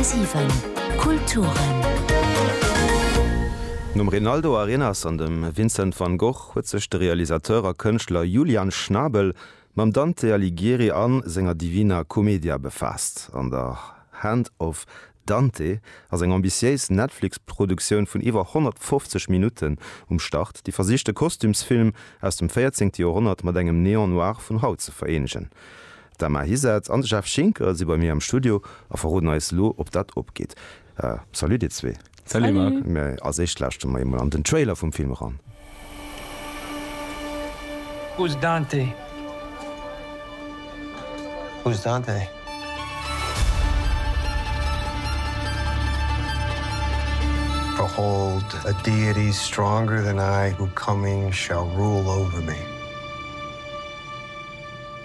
10,7 Kulturen. Nom Rinaldo Arenas an dem Vincent van Gogh huet sech de Realisateur a Kënschtler Julian Schnabel mam Dante Alighieri a senger Divina Commedia befaasst. An der Hand of Dante ass eng ambitiéis Netflix-Produktioun vun iwwer 150 Minutten um Start, déi versicht de Kostümsfilm aus dem 14. Joerhonnert mat engem Néant-Noir vun haut ze vereenegen. D'Emma Hisath an de Jeff Schinker si bei mir am Studio a verroden eis elo, ob dat opgeet. Salut dir zwee. Salut Marc. Mee als éischt lauschteren mer emol an den Trailer vum Film eran. Who's Dante? Who's Dante? Behold a deity stronger than I who coming shall rule over me.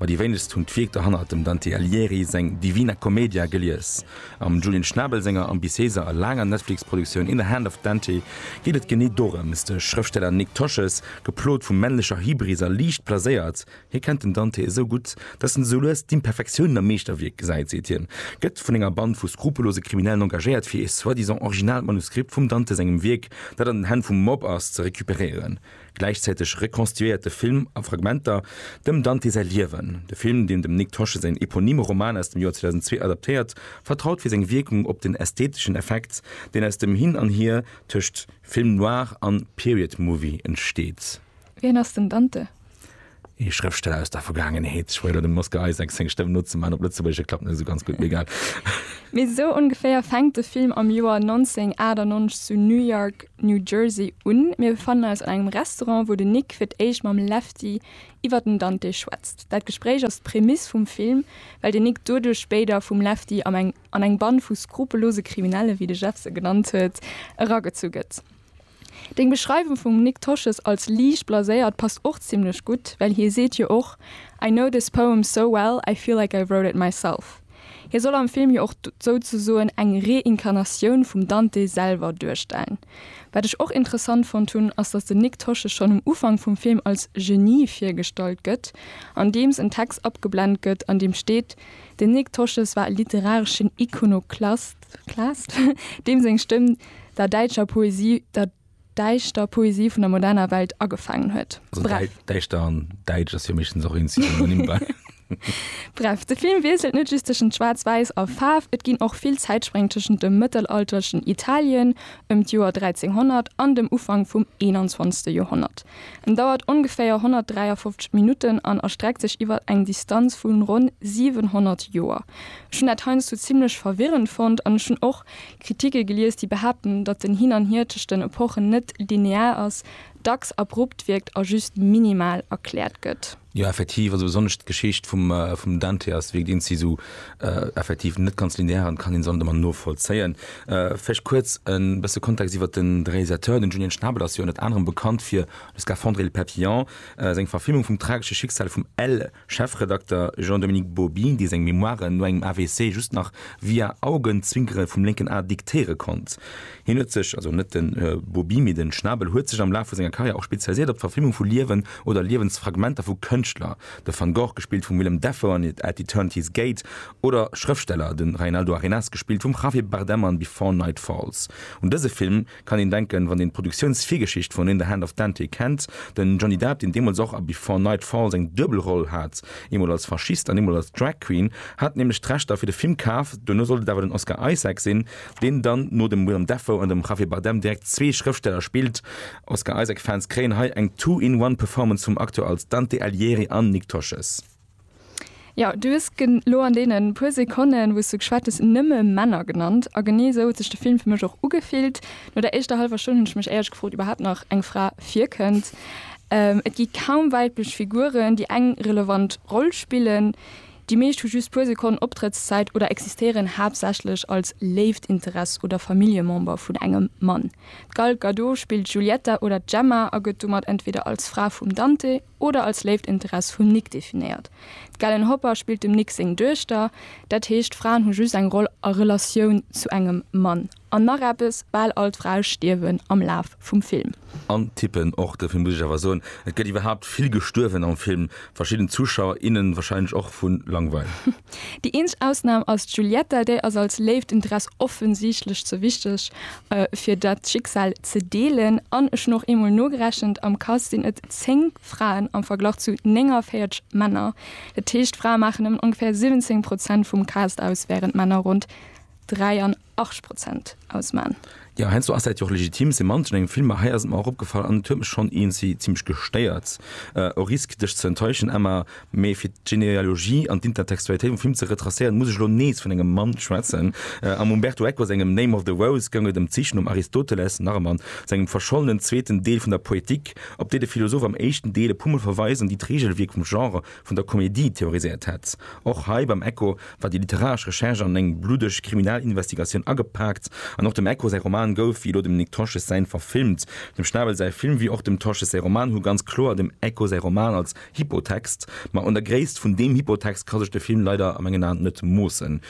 Ma déi wéinegst hunn d'Wierk dohannert dem Dante Alighieri seng Divina Commedia gelies. Am Julian Schnabel senger ambitiéiser a laanger Netflix-Produktioun In the Hand of Dante geet et genee dorëms, De Schrëftsteller Nick Tosches, geplot vu männlecher Hybris a liicht blaséiert, hie kennt den Dante esou gutt, datt en esou lues d'Imperfektiounen am Meeschterwierk gesäit, seet hien, gëtt vun enger Band vu skrupellose Kriminellen engagéiert, fir ee soi-disant originalt Manuskript vum Dante sengem Wierk, dat an den Hänn vum Mob ass, ze recuperéieren. Gläichzäiteg rekonstituéiert de Film a Fragmenter dem Dante säi Liewen. De Film, deen dem Nick Tosche säin eponyme Roman aus dem Joer 2002 adaptéiert, vertraut fir seng Wierkung op den ästheteschen Effekt, deen aus dem Hin an Hier tëscht Film noir an Period movie entsteet. Wien ass den Dante? Ee Schrëftsteller aus der Vergaangenheet. Ech fuerdere dem Oscar Isaac seng Stëmm nozemaachen, op Lëtzebuergesch, et klappt net esou ganz gutt, mee egal. Mee esou ongeféier fänkt de Film am Joer 1998 zu New York, New Jersey un. Mir befannen eis an engem Restaurant, wou den Nick fir d'éischt mam Lefty iwwer den Dante schwätzt. Dat Gespréich ass d'Prämiss vum Film, well den Nick doduerch spéider vum Lefty am eng an eng Band vu skrupellose Kriminelle, wéi de Jeff se genannt huet, eragezu gëtt. Deng Beschreiwung vum Nik Tosches als liicht blaséiert passt och zimlech gutt, well hie seet jo och I know this poem so well, I feel like I wrote it myself. Hie soll am Film jo och souzesoen eng Reinkarnatioun vum Dante selwer duerstellen. Wat ech och interessant fonnt hunn, ass datt den Nik Tosches schonn um Ufank vum Film als Genie virgestallt gëtt, andeems en Text abgeblend gëtt an deem steet, den Nik Tosches war e literareschen Ikonoklast. Claest, deem seng Stëmm der däitscher Poesie, der däischter Poesie vun der moderner Welt agefaangen huet. Also Bref. däi- Däischter an Däitsch ass jo meeschtens och een Synonym bei. Bref, de Film wiesselt net just tëschent Schwaarz-Wäiss a Faarf, et ginn och vill Zäitspréng tëschent dem mëttelalterlechen Italien ëm d'Joer 1300 an dem Ufank vum 21. Joerhonnert. En dauert ongeféier 153 Minutten an erstreckt sech iwwer eng Distanz vu ronn 700 Joer. Ech hunn dat heiansdo zimmlech verwirrend fonnt an ech hunn och Kritike gelies, déi behaapten, datt den Hin an Hier tëscht den Epochen net linear ass, dacks abrupt wierkt a just minimal erkläert gëtt. Jo effektiv, also besonnesch d'Geschicht vum vum Dante ass wierkt een si sou effektiv net ganz linear an kann een se an man novollzéien. Vläicht kuerz en bësse Kontext iwwert den de Realisateur, den Julien Schnabel ass jo ënnert anerem bekannt fir Le Scaphandre et le Papillon, seng Verfilmung vum tragesche Schicksal vum Elle Chefredakter Jean-Dominique Bauby, dee seng Memoiren no engem AVC just nach via Augenzwinkere vum lénken A diktéiere konnt. Hien huet sech, also net de Bobi, mee de Schnabel, huet sech am Laf vu senger Karriär och spezialiséiert op d'Verfilmung vu Liewen oder Liewensfragmenter vu Kënschtler, de Van Gogh, gespillt vum Willem Dafoe an At Eternity's Gate, oder Schrëftsteller, de Reinaldo Arenas, gespillt vum Javier Bardem an Before Night Falls. Un dëse Film kann een denken, wann een d'Produktiounsvirgeschicht vun In the Hand of Dante kennt. De Johnny Depp, deen deemools och a Before Night Falls eng duebel Roll hat, eemol als Faschist an eemol als Drag Queen, hat nämlech d'Rechter fir de Film kaf, duerno sollt et awer den Oscar Isaac sinn, deen dann no dem Willem Dafoe an dem Javier Bardem direkt zwee Schrëftsteller spillt. Oscar Isaac Fans kréien hei eng two in one Performance vum Acteur als Dante Alighieri an Nick Tosches. Jo, du hues gen lo an deenen puer Sekonnen wous du geschwat hues nëmme Männer genannt a genee esou huet sech de Film fir mech och ugefillt. No der éischter hallwer Stonn hunn ech mech éierlech gefrot iwwerhaapt nach eng Fra virkënnt. Et gi kaum weiblech Figuren déi eng relevant Roll spillen. Déi meescht hu just puer Sekonnen Optrëttszäit oder existéieren haaptsächlech als léift Interess oder Familljemember vun engem Mann. D'Gal Gadot spillt d'Giulietta oder d'Gemma a gëtt domat entweder als Fra vum Dante oder als léift Interess vum Nick definéiert. D'Galen Hopper spillt dem Nick seng Duechter. Dat heescht, Fraen hu just eng Roll a Relatioun zu engem Mann. An nach eppes, bal all d'Frae stierwen am Laf vum Film. An tippen och dofir muss ech awer soen, et gëtt iwwerhaapt vill gestuerwen am Film, verschidden Zuschauer, innen wahrscheinlech och vu Langweil. Déi eenzeg Ausnahm ass d'Giulietta, déi ass als léift en Dress offensichtlech ze wichteg fir dat Schicksal ze deelen. An ech hunn och eemol nogerechent, am Cast sinn et 10 Fraen am Verglach zu 49 Männer. Dat heescht, Frae maachen nëmmen ongeféier 17 Prozent vum Cast aus, während Männer ronn 83 8 Prozent ausman. Ja heinsdo ass dat jo och legitim, se manchen engem Film, ma hei ass et mer och opgefall an et huet mech schonn eenzi zimmlech gestéiert. Au risque dech ze enttäuschen Emma, mee fir d'Genealogie an d'Intertextualitéit vum Film ze retracéieren, muss ech elo nees vun engem Mann schwätzen. Am Umberto Eco sengem Name of the Rose goung et ëm d'Sich nom Aristoteles, nach e Mann, sengem verschollenen zweeten Deel vun der Poetik, op déi de Philosoph am éischten Deel e puermol verweist an déi d'Reegelwierk vum Genre, vun der Komedie theoriséiert hätt. Och hei beim Echo war déi literaresch Recherche an eng bluddeg Kriminalinvestigatioun agepaakt. An och dem Echo säi Roman gouf, wéi elo dem Nic Tosches säin, verfilmt. Dem Schnabel säi Film, wéi och dem Tosches säi Roman, hu ganz kloer dem Echo säi Roman als Hypotext. Ma un der Gréisst vun deem Hypotext ka sech de Film leider a mengen Aen net moossen.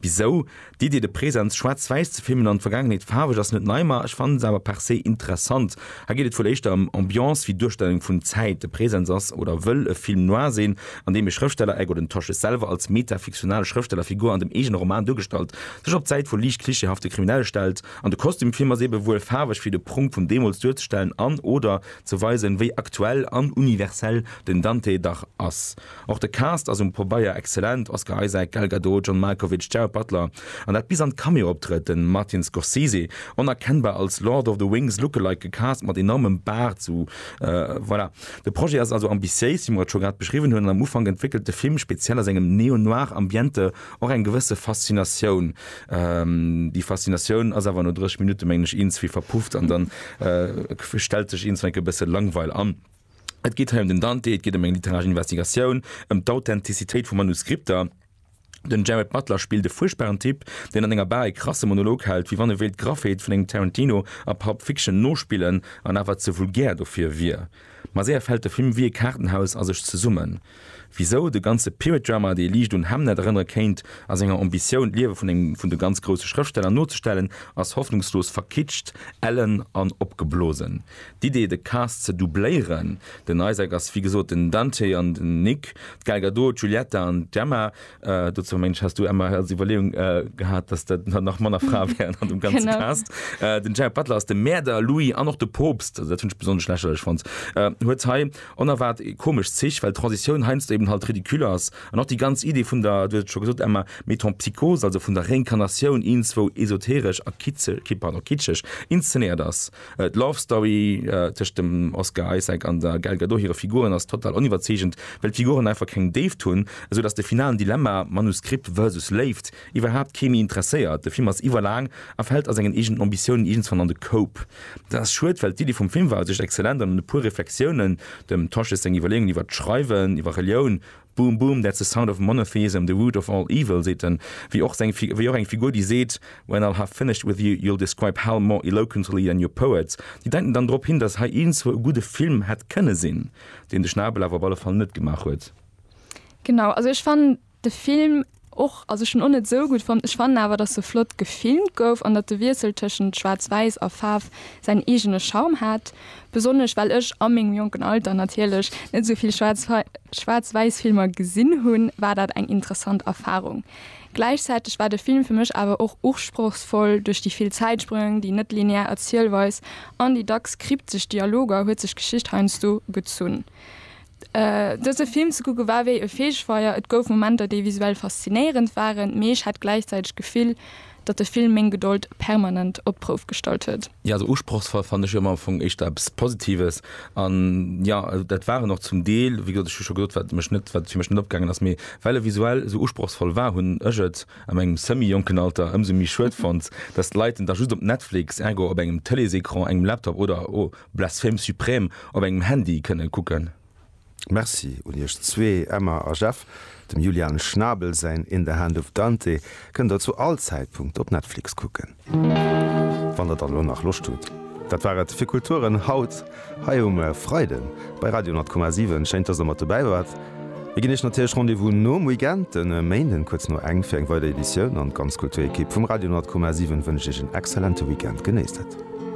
Bisou, d'Iddi de Presens schwaarz-wäiss ze filmen an d'Vergaangenheet faarweg ass net nei, ma ech fannen se awer per se interessant. Hei geet et wuel éischter ëm Ambiance wéi Duerstellung vun Zäit. De Presens ass oder wëll e Film noir sinn, an deem e Schrëfsteller, ergo den Tosches selwer als meta-fiktional Schrëfsteller-Figur an dem eegene Roman duergestallt, sech op d'Säit vu liicht klischeehafte Kriminelle stellt. An de Kostüm Film ass eebe wuel faarweg fir de Prunk vun deemools duerzestellen an, oder ze weisen, wéi aktuell an universell den Dante dach ass. Och de Cast ass um Pobeier exzellent, Oscar Isaac, Gal Gadot, John Malkovich, Gerard Butler, an dat bis an d'Cameo-Optrëtt, de Martin Scorsese, onerkennbar als Lord of the Wings Lookalike gecast mat enormem Baart, sou voilà. De Projet ass also ambitiéis, wéi mer et scho grad beschriwwen hunn, an am Ufank entwéckelt de Film, speziell a sengem Neo-Noir Ambiente, och eng gewësse Faszinatioun. Déi Faszinatioun ass awer no 30 Minutte mengen ech iergendwéi verpufft an dann stellt sech iergendwéi e bësse Langweil an. Et geet hei ëm den Dante, et geet ëm eng literaresch Investigatioun, ëm d'Authentizitéit vu Manuskripter. Den Jared Butler spillt e fuerchtbaren Typ, deen an enger Bar e krasse Monolog hält, wéi wann e wéilt d'Graffeet vun engem Tarantino a Pulp Fiction nospillen, an awer ze vulgär dofir wier. Ma séier fält de Film wéi e Kaartenhaus a sech zesummen. Wisou de ganze Period Drama, dee liicht un Hamnet erënnere kéint, a senger Ambitioun, d'Liewe vun engem vun de ganz grousse Schrëftsteller nozestellen, ass hoffnungslos verkitscht, ellen an opgeblosen. D'Idee, de Cast ze doubléieren, den Isaac ass wéi gesot den Dante an den Nick, d'Gal Gadot d'Giulietta an d'Gemma, Äh, dozou Mensch hast du Emma als Überlegung äh, gehabt, dass dat nach Mann a Fra wären an dem ganzen Genau. Cast. Äh, den Jared Butler ass de Mäerder, Louis an och de Poopst, also dat hunn ech besonnesch lächerlech fonnt, äh, huet hei onerwaart komesch Zich, well d'Transitioun heiansdo eben halt ridicule ass an och déi ganz Idee vun der, du hues et scho gesot Emma, Metempsychose, also vun der Reinkarnatioun, ienswou esoteresch a kitzel, ki- pardon, kitscheg inszenéiert ass. D'Love Story tëscht dem Oscar Isaac an der Gal Gadot hire Figuren ass total oniwwerzeegend, well d'Figuren einfach keng Déift hunn, esou datt de finalen Dilemma, Manuskript versus Léift, iwwerhaapt kee méi interesséiert. De Film ass iwwerlaang a fält a sengen eegenen Ambitiounen iergendswann an de Koup. Dat ass schued, well d'Iddi vum Film war u sech exzellent an un e puer Reflexiounen, dem Tosches seng Iwwerleeungen iwwert d'Schreiwen, iwwer Relioun, Boom boom, that's the sound of monotheism, the root of all evil, seet en, wéi och seng Fi wéi och eng Figur, déi seet, When I'll have finished with you, you'll describe hell more eloquently than your poets. Déi deiten dann drop hin, datt hei iergendzwou e gudde Film hätt kënne sinn, deen de Schnabel awer op alle Fall net gemaach huet. Genau, also ech fannen de Film Och, also ech hunn och net sou gutt fonnt. Ech fannen awer dass se flott gefilmt gouf an dat de Wiessel tëschent schwaarz wäiss a Faarf säin eegene Charme hat. Besonnesch well ech a mengem jonken Alter natierlech net sou vill schwaarz wäiss Filmer gesinn hunn, war dat eng interessant Erfarung. Gläichzäiteg war de Film fir mech awer och usprochsvoll duerch déi vill Zäitsprëng, déi net linear Erzielweis an déi dacks kryptesch Dialoger huet sech d'Geschicht heiansdo gezunn. Dëse Film ze kucke war wéi e Feegefeier, et gouf Momenter, déi visuell faszinéierend waren, mee ech hat gläichzäiteg d'Gefill, datt de Film meng Gedold permanent op d'Prouf gestallt huet. Jo, esou usprochsvoll fanne ech jo ëmmer am Fong éischter eppes Positives. An jo, dat war en och zum Deel. Wéi gesot, ech hu scho gesot, wat mech net, wat fir mech net opgaangen ass. Mee well e visuell esou usprochsvoll war, hunn ech et a mengem semi-jonken Alter ëmsou méi schued fonnt, datt d'Leit en da just op Netflix, ergo op engem Tëleesecran, engem Laptop oder o. Blasphème suprême op engem Handy kënnen kucken. Merci un iech zwee, Emma a Jeff. Dem Julian Schnabel säin In the Hand of Dante kënnt der zu all Zäitpunkt op Netflix kucken. Wann der dann elo nach Loscht hutt. Dat war et fir Kulturen haut hei um Freiden bei Radio 10,7. Schéin dass der mat dobäi waart. Mir ginn iech natierlech Rendez-vous nom Weekend, den Méinden kuerz no eng fir eng weider Editioun. An d'ganz Kulturekipp vum Radio 10,7 wënscht iech en exzellente Weekend. Genéisst et.